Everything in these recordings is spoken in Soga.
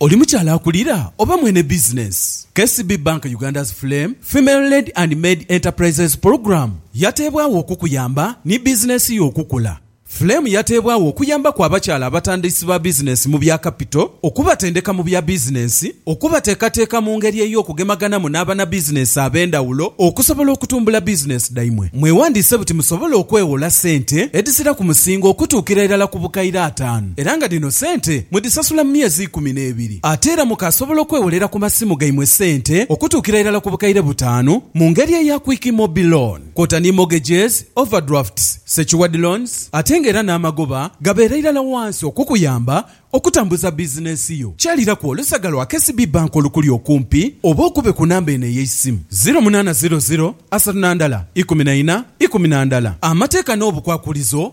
Oli mukyala akulira oba mwene bizinensi? KCB Bank Uganda's Flame Female-Led and Maid Enterprises Programme yateebwagho okukuyamba ni bizinensi yo okukula. Flame yateebwagho okuyambaku abakyala abatandisi ba bizinensi mu bya kapito, okubatendeka mu bya bizinensi, okubateekateeka mu ngeri ey'okugemaganamu n'abanabizinensi ab'endhawulo okusobola okutumbula bizinensi dhaimwe. Mwewandiise buti musobole okweghola sente edhizira ku musingo okutuukira irala ku bukaire ataanu. era nga dhino sente mudhisasula mu myezi ikumi n'ebiri. Ate era mukaasobola okwewolera ku masimu gaimwe sente okutuukira irala ku bukaire butaanu mu ngeri eya Quick Mobi Loan kwota ni mortgages, overdrafts, secured loans ate nga era n'amagoba gabeera irala wansi okukuyamba okutambuza bizinensi yo. Kyaliraku olusaga lwa KCB Bank olukuli okumpi oba okube ku namba eno ey'eisimu, ziro munaana ziro ziro asatu na ndala ikumi na ina ikumi na ndala. Amateeka n'obukwakulizo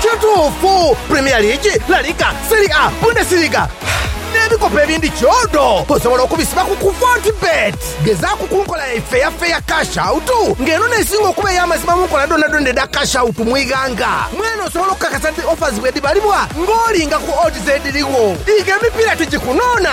Kituufu, Premier League, La Liga, Serie A, Bundesliga, n'ebikopo ebindi kyodo osobola okubisiba ku ku Fortebet. Gezaaku ku nkola yaife eya Fair Cash Out nga eno n'esinga okuba ey'amazima mu nkola dhoonadhoona edha Cash Out mu ighanga. Mwene osobola okukakasa nti offers bwedhibalibwa ng'olinga ku odds edhirigho. Diga emipiira tigikunoona!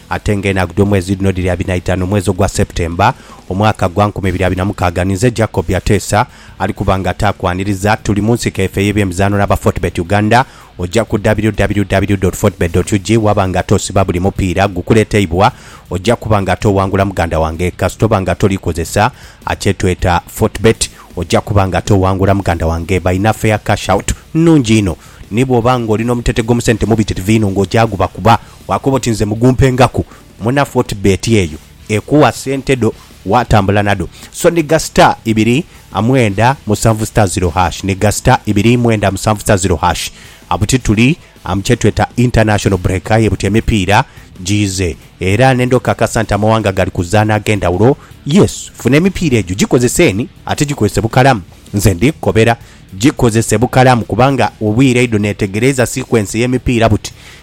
Ate nga enaku dh'omwezi dhino dhiri abiri na itanu omwezi ogwa September, omwaka gwa nkumi ibiri abiri na mukaaga, ninze Jacob Ateesa ali kuba nga ataakwaniriza. Tuli mu nsiko efe ey'ebyemizaano n'aba Fortebet Uganda. Oja ku www.fortebet.ug waba nga ate osiba buli mupiira gukuleteibwa. Oja kuba nga ate owangula muganda wange. Kasita oba nga toli kozesa akyetweta Fortebet, oja kuba nga ate owangula muganda wange. Balina fair cash out nnungi inho. Ni bwoba nga oli n'omutete gw'omusente mubitirivu inho nga oja gubakuba Bwakoba oti nze mugumpe ngaku muna fortbet eyo ekuwa sente dho watambula nadho so niga star ibiri amwenda musanvu star ziro hash niga star ibiri mwenda musanvu star ziro hash abuti tuli am kyetweta international break aye buti emipiira jiize era nenda okakasa nti amawanga gali kuzana agendhawulo yes funa emipiira egyo gikozeseeni ate gikozese bukalamu nze ndi kukobera gikozese bukalamu kubanga obwire idho netegereiza sequence yemipiira buti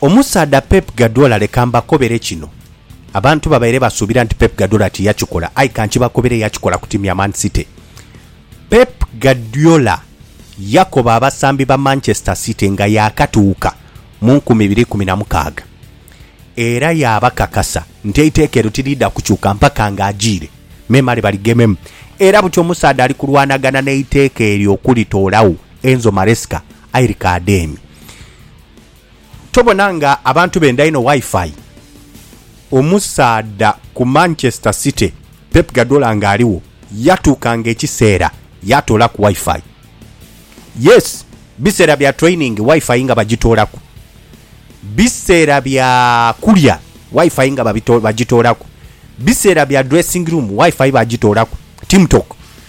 Omusaadha Pep Guardiola leka mbakobere kino, Abantu babaire basuubira nti Pep Guardiola tiyakikola aye ka nkibakobere yakikola ku tiimu ya Man City. Pep Guardiola yakoba abasambi ba Manchester City nga yaakatuuka mu nkumi ibiri ikumi na mukaaga era yaabakakasa nti eiteeka eryo tiriidha kukyuka mpaka ng'ajiire memale baligememu era buti omusaadha ali kulwanagana n'eiteeka eryo okulitoolagho, Enzo Maresca, Aye Rikadeemi, tobona nga abantu benda inho Wi-Fi? Omusaadha ku Manchester City, Pep Guardiola nga aligho, yatuukanga ekiseera yaatoolaku Wi-Fi. Yes, biseera bya training Wi-Fi nga bagitoolaku. Biseera bya kulya Wi-Fi nga bagitoolaku. Biseera bya dressing room Wi-Fi bagitoolaku. Team talk,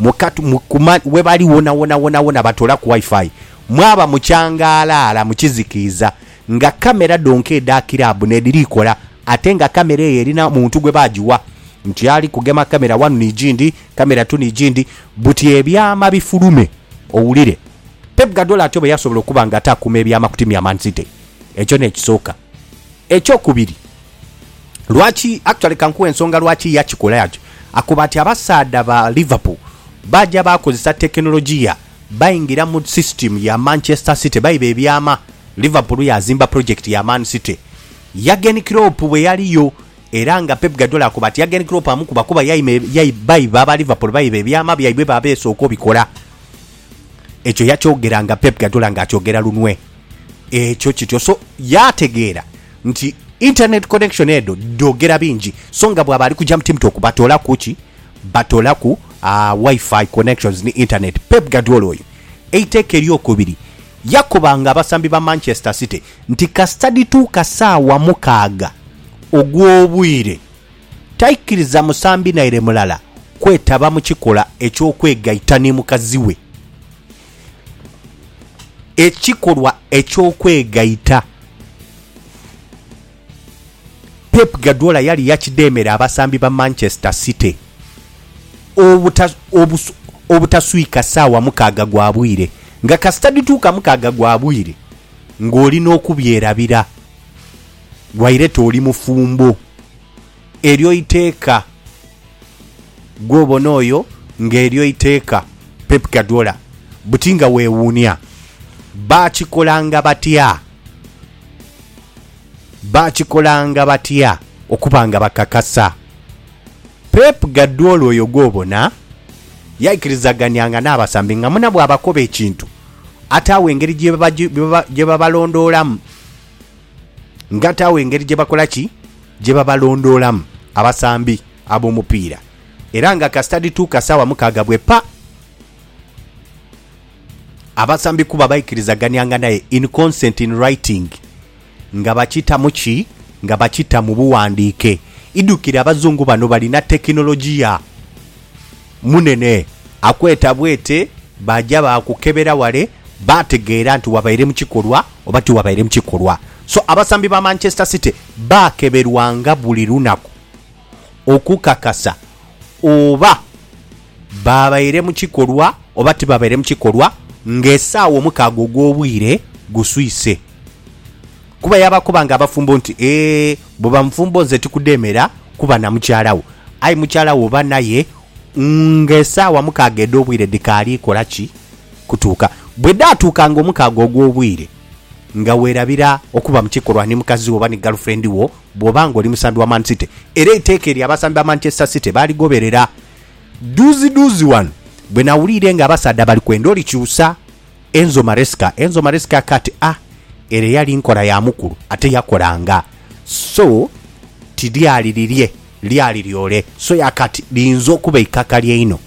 Mukatu, mu kuma, ghebali wonawona, wonawona batoolaku Wi-Fi. Mwaba mu kyangaalaala, mu kizikiiza, nga kkamera dhonka edha kiraabu n'edhiri kola, ate nga kkamera eyo erina muntu gwe baagiwa nti ali kugema kkamera wanu ni gindi, kkamera tu ni gindi, buti ebyama bifulume owulire. Pep Guardiola atyo bwe yasobola okuba nga atakuuma ebyama ku tiimu ya Man City. Ekyo n'ekisooka. Ekyokubiri. Lwaki, actually kankuwe ensonga lwaki yakikola atyo. Akoba ati abasaadha ba Liverpool baaja baakozesa tekinologiya baingira mu system ya Manchester City baiba ebyama. Liverpool yaazimba project ya Man City Jurgen Klopp bwe yaliyo era nga Pep Guardiola akoba ati Jurgen Klopp amukuba kuba yaima yaima baiba aba Liverpool baiba ebyama byaibwe baabeesooka obikola. Ekyo yakyogera nga Pep Guardiola ng'akyogera lunwe. Ekyo kityo so yaategeera nti internet connection edho dhoogera bingi so nga bwaba ali kuja mu TimTok batoolaku ki? Batoolaku ah, Wi-Fi connections ni internet. Pep Guardiola oyo eiteeka ery'okubiri yakobanga abasambi ba Manchester City nti kasita dhituuka saawa mukaaga ogw'obwire taikiriza musambi naire mulala kwetaba mu kikola eky'okwegaita ni mukazi we Ekikolwa eky'okwegaita, Pep Guardiola yali yakidheemera abasambi ba Manchester City obuta obutaswika saawa mukaaga gwa bwire nga kasita dhituuka mukaaga gwa bwire ng'oli n'okubyerabira waire t'oli mufumbo. eryo iteeka. Gwobona oyo nga eryo iteeka Pep Guardiola buti nga weewuunia. Baakikolanga batya? Baakikolanga batya okuba nga bakakasa? Pep Guardiola oyo gwobona yaikirizaganianga n'abasambi nga muna bw'abakoba ekintu ataagho engeri gye babalondoolamu, nga ataagho engeri gye bakola ki? gye babalondoolamu abasambi ab'omupiira era nga kasita dhituuka saawa mukaaga bwe pa abasambi kuba baikirizaganianga naye in consent in writing nga bakita mu ki? Nga bakita mu buwandiike. Idhukire abazungu bano balina tekinologiya munene. Akweta bwete baja baakukebera wale baategeera nti wabaire mu kikolwa oba tiwabaire mu kikolwa. So abasambi ba Manchester City Baakeberwanga buli lunaku okukakasa oba baabaire mu kikolwa oba tibabaire mu kikolwa ng'esaawa omukaaga ogw'obwire guswise. Kuba yaabakobanga abafumbo nti, Ee, bw'oba mufumbo nze tikudheemera kuba na mukyala wo. Aye mukyala wo oba naye ng'esaawa mukaaga edh'obwire dhikaali kola ki? Kutuuka. Bwe dhaatuukanga omukaaga ogw'obwire. Nga weerabira okuba mu kikolwa ni mukazi wo oba ni galufurendi wo bw'oba ng'oli musambi wa Man City era eiteeka eryo abasambi ba Manchester City baaligoberera. Dhuuzidhuuzi ghano bwe nawuliire ng'abasaadha bali kwenda olikyusa Enzo Maresca, Enzo Maresca akati, Ah, ere eyali nkola ya mukulu ate yakolanga. So ti lyali lirye, lyali lyole. So yakati, liyinza okuba eikakali einho.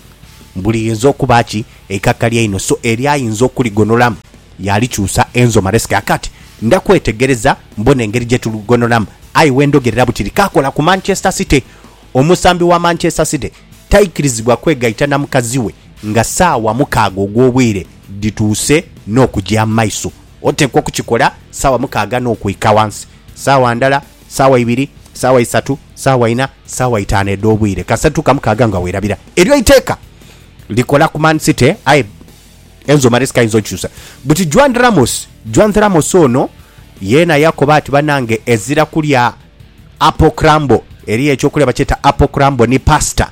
Mbu liyinza okuba ki? Eikakali einho. So eri ayinza okuligonolamu. Yaalikyusa enzo Maresca aka ati, Ndakwetegereza mbone engeri gye tuligonholamu, aye we ndhogerera butili kaakola ku Manchester City. Omusambi wa Manchester City taikirizibwa kwegaita na mukazi we nga saawa mukaaga ogw'obwire dhituuse n'okugya mu maiso. Oteekwa okukikola saawa mukaaga n'okwika ghansi. Saawa ndala, saawa ibiri, saawa isatu, saawa ina, saawa itaanu edh'obwire, kasita tutuuka mukaaga nga weerabira. Eryo eiteeka likola ku Man City, aye. Enzo Maresca ayinza okyusa buti Juan Ramos. Juan Ramos ono yeena yakoba ati, Banange ezira kulya apple crumble, eriyo eky'okulya bakyeta apple crumble ni pasta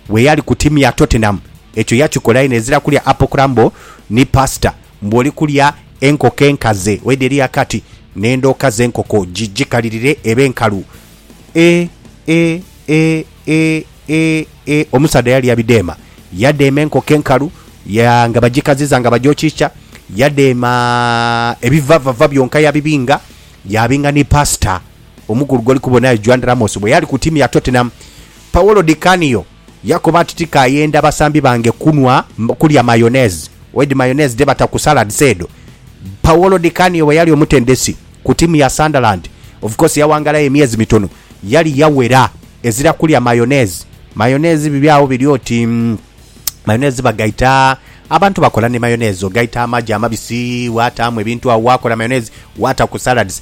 bweyali ku tiimu ya Tottenham ekyo yakikola yena ezira kulya apple crumble ni pasta mbu oli kulya enkoko enkaze, waidha eriyo akati n'endhoka z'enkoko gigikalirire ebe nkalu E, e, e, e, e, e, omusaadha yalya bidheema. Yadheema enkoko enkalu ya, nga bagikaziza nga bagyokyikya. Yadheema ebivavava byonka yabibinga, yaabinga ni Pasita omukulu gw'oli kubona eyo, Juan Ramos, bwe yali ku ttiimu ya Tottenham. Paolo Di Canio. Yakoba ati, Tikayenda basambi bange kunhwa, kulya mayonnaise. Oidhi mayonnaise dhe bata ku salads edho? Paolo Di Canio bwe yali omutendesi ku tiimu ya Sunderland, of course yawangalayo emyezi mitono, yali yawera ezira kulya mayonnaise. Mayonnaise biri agho biri oti mayonnaise bagaita, abantu bakola ni mayonnaise. Ogaita amagi amabisi, waataamu ebintu agho waakola mayonnaise, waata ku salads.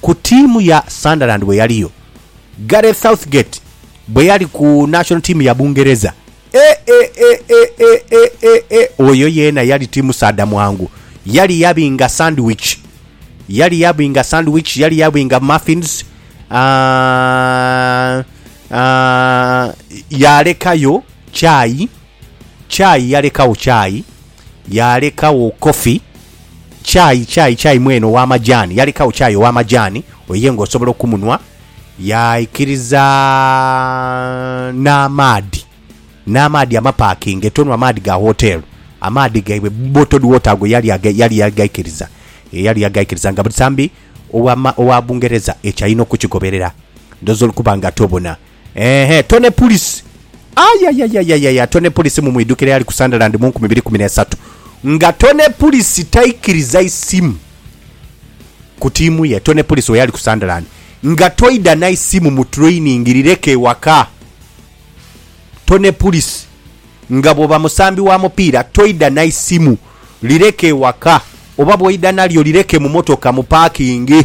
ku ttiimu ya Sunderland bwe yaliyo, Gareth Southgate bwe yali ku national team ya Bungereza, e-e-e-e-e-e-e-e, oyo yeena yali ti musaadha mwangu. Yali yabinga sandwich, yali yabinga sandwich, yali yabinga muffins, aah, aah, yaalekayo chai. Chai yalekagho chai, yaalekagho coffee, chai, chai, chai mwene ow'amajaani, yalekagho chai ow'amajaani, oyo ye ng'osobola okumunhwa, yaikiriza n'amaadhi, n'amaadhi amapaakinge, tonhwa maadhi ga wooteelu, amaadhi gaibwe, bottled water ago yali aga, yali yagaikiriza, e, yali yagaikiriza nga busambi owa, owa Bungereza ekyo alina okukigoberera. Ndhooza olukuba nga tobona. Eehh Tony Pulisi ayayayayaya Tony Pulisi mumwidhukira eyali ku Sunderland mu nkumi ibiri kumi n'esatu nga Tony Pulisi taikiriza isimu ku tiimu ye Tony Pulisi weyali ku Sunderland nga toidha na isimu mu training lireke ewaka Tony Pulisi nga bwoba musambi wa mupiira toidha na isimu lireke ewaka oba bwoidha nalyo lireke mu motoka mu paakingi.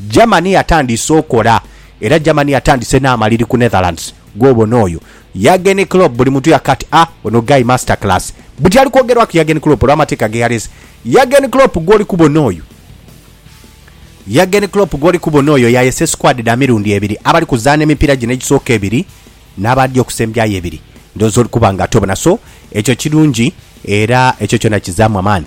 Germany yatandiise okola era Germany yatandise n'amaliri ku Netherlands. Gwobona oyo Jurgen Klopp buli muntu yakoka ati ah ono guy master class. Buti ali kwogerwaku Jurgen Klopp olw'amateeka geyalese. Jurgen Klopp gwoli kubona oyo Jurgen Klopp gwoli kubona oyo yayese squad dha mirundi ebiri abali kuzaana emipiira gino egisooka ebiri n'abaadhi okusembyayo ebiri. Ndhooza oli kuba nga tobona so ekyo kirungi era ekyo kyona kizaamu amaani.